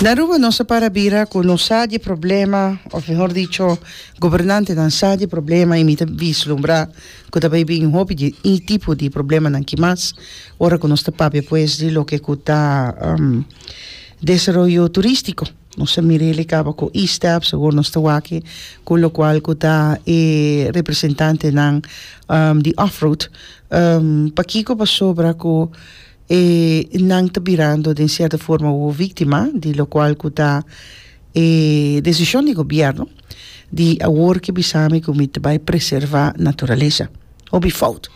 Na Aruba nos a para bira cu nos sa di e problema, of mehor dicho gobernantenan sa di e problema y mi ta vislumbrá cu ta bay bin hopi di e tipo di problemanan aki mas ora cu nos ta papia pues di loke cu ta desaroyo turístico. Nos a mira y likaba cu ISTEP, segur nos ta wak cu locual cu ta e representantenan di Offroad, pakico pasobra cu E nan ta birando den sierto forma wowo víktima di lokual ku ta e desishon di gobièrnu di awor ke bisa mi ku mi ta bai preservá naturalesa. Hopi fout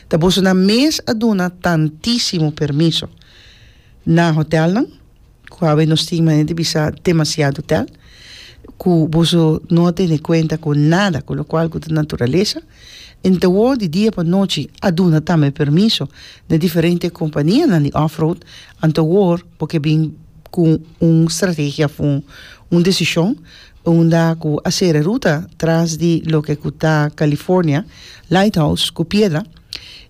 ta bosonan mes a duna tantísimo permiso na hotèlnan. ku awe nos tin manera di bisa demasiado tel ku boso no a tene kuenta ku nada ku lokual ku ta naturalesa enta wou di dia pa nochi a duna tambe permiso na diferente kompanianan di offroad anto wor bo ke bin ku un strategia of un desishon unda ku a sera e ruta tras di loke ku ta California Lighthouse ku Piedra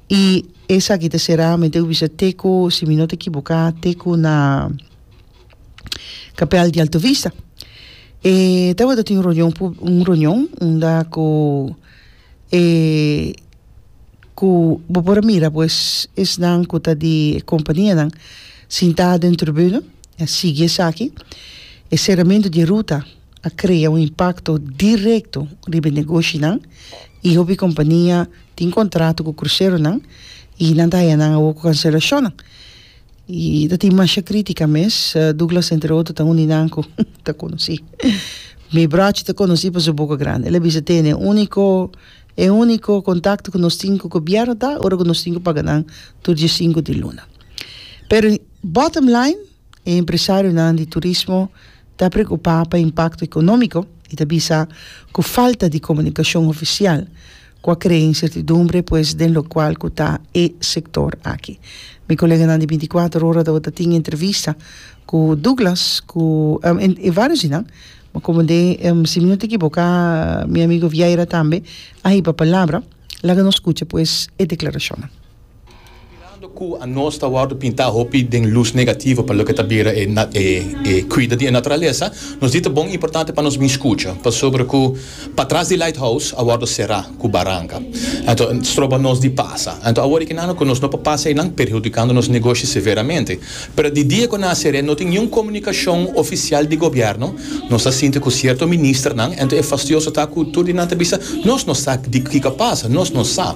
i Esaki ta será, mi ta bisa te ku, si mi no ta ekiboká, te ku na kapèl di Alto Vista. E tabata tin un reunion pu, un reunion unda ku e, ku bo por a mira pues esnan ku ta di e kompanianan sintá den tribuna, a sigui esaki, e seramentu di e ruta. a krea un impakto direkto riba e negoshinan i hopi kompania tin kontrato ku kruseronan i nan ta haña nan awor ku kanselashonnan i ta tin masha krítika mes, Douglas entre otro ta un di nan ku ta konosí mi bròchi ta konosí pa su boka grandi el a bisa tene e úniko e úniko kontakto ku nos tin ku gobièrnu ta ora ku nos tin ku paga nan tur di e sinku di luna pero bottom line E empresarionan di turismo ta preokupá pa impakto ekonómiko i ta bisa ku falta di komunikashon ofisial ku a krea insertidumbre pues den lokual ku ta e sektor aki. Mi koleganan di bintikuater ora ta tabata tin entrevista ku Douglas ku e vários di nan komo den si mi no ta ekiboká mi amigo Vieira tambe a hiba palabra. Laga nos skucha pues e deklarashonnan. Mirando cu anos ta wordo pinta hopi den luz negativo pa loke ta bira e cuida di e naturalesa, nos di ta bon y importante pa nos bin scucha pasobra cu patras di Lighthouse a wordo cera cu baranca. Anto stroba nos di pasa. Anto awor e kenandu cu nos no por pasa eynan perhudicando nos negoshi severamente. Pero di dia cu nan a cera no tin niun comunicacion oficial di gobierno, nos ta sinti cu cierto ministernan, anto e fastioso ta cu tur di nan ta bisa, Nos no sa di kico a pasa, nos no sa.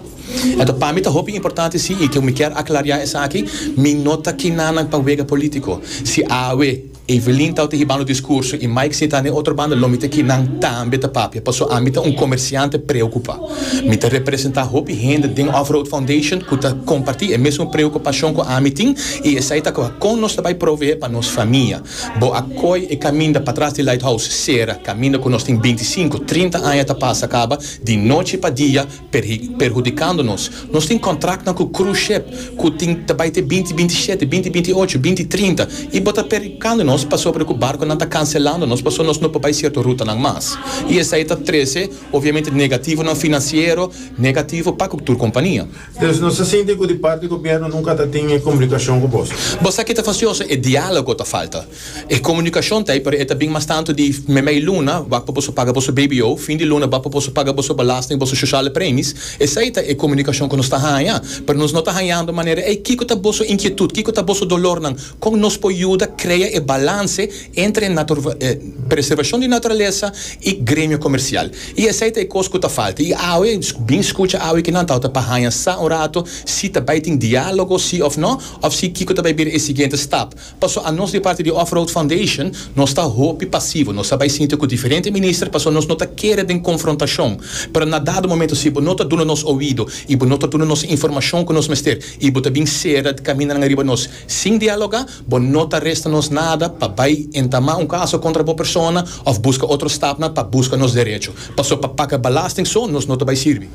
Enton pa mi ta hopi importante si i ke mi kier aklariá esaki, mi no ta kina nan pa wega polítiko. Si awe Evelyn ta tehi bando diskurso i Mike seta den otro banda, lo mi ta kinan tambe ta papia paso ami ta un komersiante preokupá. Mi ta representá hopi hende den Off Road Foundation ku ta kompartí e mesun preokupashon ku ami tin i esei ta kon nos ta bai proveé pa nos famia. Bo a koi e kaminda patras di Lighthouse sera, kaminda ku nos tin binti sinku, trinta aña ta pasa kaba di nochi pa dia, perhudikando nos. Nos tin kontraktnan ku cruise ship ku tin ta bai te binti binti shete, binti binti ocho, binti trinta i bo ta perhudikando nos pasobra ku barkunan ta kanselando nos pasobra nos no por bai sierto rutanan mas. I esei ta trese obviamente negativonan finansiero negativo pa tur kompania. Entonces nos ta sinti ku di parti gobierno nunka ta tin e komunikashon ku bos. Bo sa ke ta fasioso? E dialogo ta falta. E komunikashon ta ei pero e ta bin mas tantu di memei luna wak pa boso paga boso BBO, fin di luna wak pa boso paga boso belasting, boso shoshale premis. Esei ta e komunikashon ku nos ta haña. Pero nos no ta hañando manera ei. Kiko ta boso inkietut? Kiko ta boso dolornan? Kon nos por yuda krea e balanse entre e e preservashon di naturalesa i gremio komersial? I esei ta e kos ku ta falta. I awe, bin skucha awe kinan tabata pa haña sa un rato si ta bai tin diálogo si òf nò òf si kiko ta bai bira e siguiente stap. Paso a nos di parti di Off Road Foundation nos ta hopi pasivo, nos ta bai sinti cu diferente minister paso nos no ta kere den confrontacion, pero na dado momento si bo no ta duna nos oido y bo no ta duna nos informacion cu nos mester y bo ta bin cera caminanan riba nos sin dialoga, bo no ta resta nos nada pa bai entama un caso contra bo persona of busca otro stapnan pa busca nos derecho, paso pa paga balasting so nos no ta bai sirbi.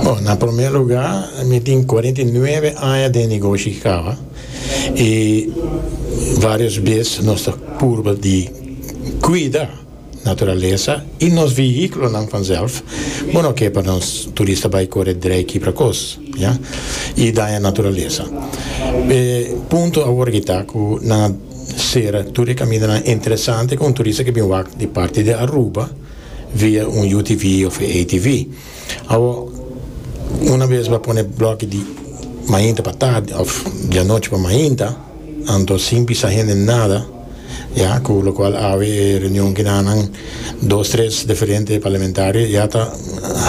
Bon, na promer lugar mi tin cuarenta y nueve aña den negoshi caba. y varios bes nos ta purba di cuida naturalesa y nos vehiculonan vanzelf bo no ke pa nos turista bay core drei kibra cos ya y daña naturalesa e punto awor ki ta cu nan a cera tur e caminanan interesante cu un turista ke bin wak di parti di Aruba via un UTV of ATV. Awor, una bes bo a pone bloki di mainta pa tardi of di anochi pa mainta, anto sin bisa hende nada, ya, cu locual awe e reunion ki nan nan dos tres diferente parlamentario ya ta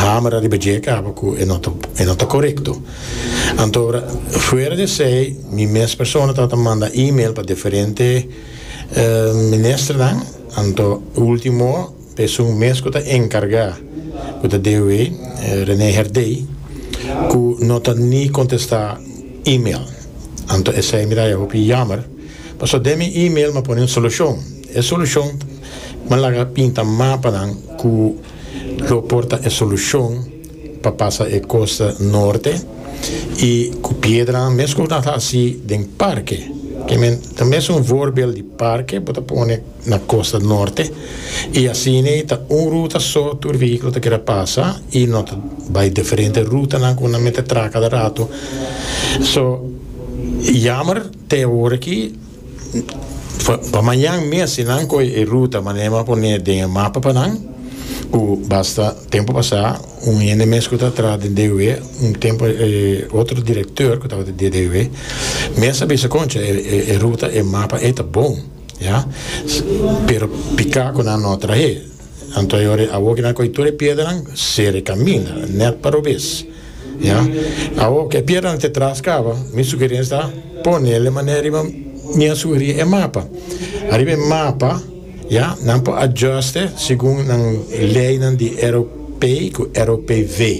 hamera riba dje caba cu e no ta e no ta corecto. Antogra, fuera di esey, mi mes persona ta ta manda email pa diferente minister nan, anto ultimo Esun mes cu ta encarga cu ta dewe Rene Herdey cu no ta ni contesta email. Anto esey mi ta haya hopi yamer. Paso den mi email mi a pone un solucion. E solucion mi a laga pinta mapanan cu lo por ta e solucion pa pasa e costa norte y cu piedranan mes cu bo ta haci den parke. Ke men ta mes un voorbeeld di parke bo ta pone. na Costa Norte y asina e ta un ruta so tur vehículo ta keda pasa y no ta bay diferente rutanan cu nan mete a traha cada rato so yamer te awor aki pa mañan mes si nan coge e ruta manera mi a pone den e mapa pa nan cu basta tempo pasa un hende mes cu ta traha den DUW un tempo otro director cu tabata den DUW mes a bisa concha e ruta e mapa e ta bon. Ya. Pero pika ku nan no trahe. Anto ayore awo ke nan kohe tur e piedranan sere kaminda nèt pa robes. Ya. Awo ke piedranan te tras kaba, mi sugerensia ta ponel e manera riba mi a sugerí e mapa. Ariba e mapa, ya, nan por adjùste segun nan leinan di Eropei ku Eropeive.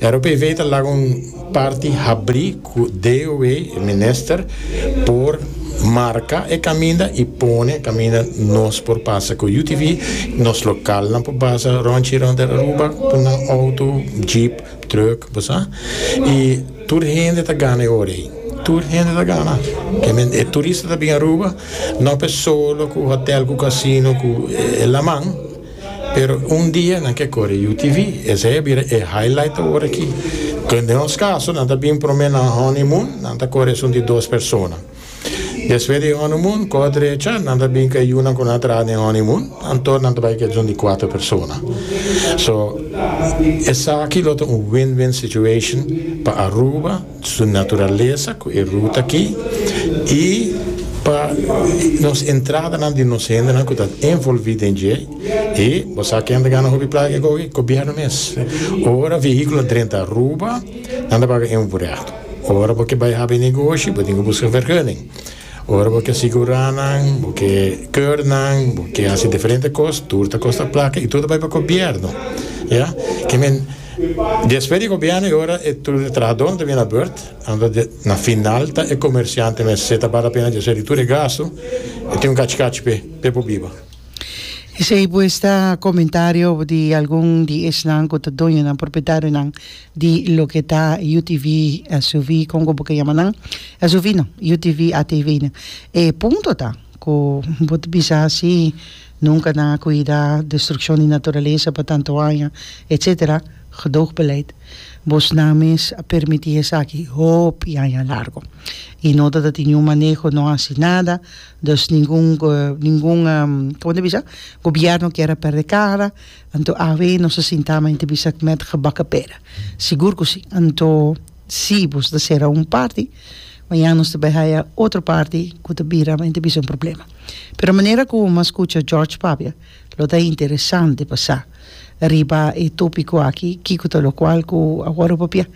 Eropeive ta laga un parti habrí. cu DOW, e minister, por marca e caminda y pone e caminda nos por pasa cu UTV, nos localnan por pasa rond y rond den Aruba cu nan auto, jeep, truck, bo sa. Y tur hende ta gana e ora ey. Tur hende ta gana. E turista ta bin Aruba, no pe solo cu hotel cu casino cu e laman. Pero un dia nan ke kore UTV, esei a bira e highlight awor aki. Kende nos kaso nan ta bin prome na un honeymoon, nan ta kore esun di dos persona. Despues di e honeymoon, koh drecha, nan ta bin ku e yunan ku nan a traha den honeymoon, anto nan ta bai ku esun di cuatro persona. So, esaki lo ta un win-win situation pa Aruba, su naturalesa cu e ruta aki y pa nos entradanan di nos hendenan cu ta envolvi den dje y bo sa ken ta gana hopi placa e coge? Gobierno mes. Ora vehiculo a drenta Aruba nan ta paga un vurado. Ora bo ke bay habi negoshi bo tin cu busca vergunning. Ora bo ke sigurá nan, bo ke keur nan, bo ke hasi diferente kos, tur ta kosta plaka i tur ta bai pa gobièrnu. Ya. Ke men, despues di gobièrnu e ora e tur e trahadó nan ta bini na burt, anto de, na final ta e komersiante mes, se ta bal lapena despues di tur e gastu, e tin un kachi kachi p'e, p'e por biba. Esei pues ta komentario di algun di esnan ku ta doño nan, propietario nan. di loke ta UTV SUV konko bo ke yama nan SUV nan UTV ATV nan e punto ta ku bo ta bisa si nunka nan a kuida destrukshon di naturalesa pa tantu aña etsetera gedoogbeleidt bosnan mes a permití esaki hopi aña largo i no ta ta tin niun maneho no hasi nada dus ningun ningun komo ta bisa gobièrnu kier a pèrdè kara Anto awe nos a sinta ama inti bisa kmet gebaka pera? Sigur ku si. Anto si bo ta sera un parti, mañan nos ta bai haya otro parti ku ta bira ama inti bisa un problema. Pero manera ku bo mas kucha George papia, lo ta interesante pa sa riba e topiko aki kiko ta lokual ku a wòrdu papia.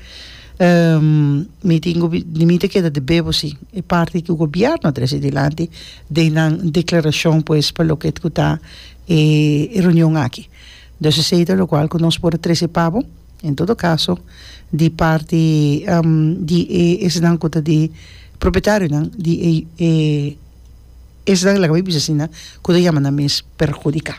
Mi tin ku di mi ta keda di bebo si e parti ku gobièrnu a trese dilanti den nan deklarashon pues pa loket ku ta e reunion aki. Dus esei ta lokual ku nos por a trese pa bo. En todo kaso di parti di e esnan ku ta di propietarionan di e e esnan laga mi bisa asina ku ta yama nan mes perhudiká.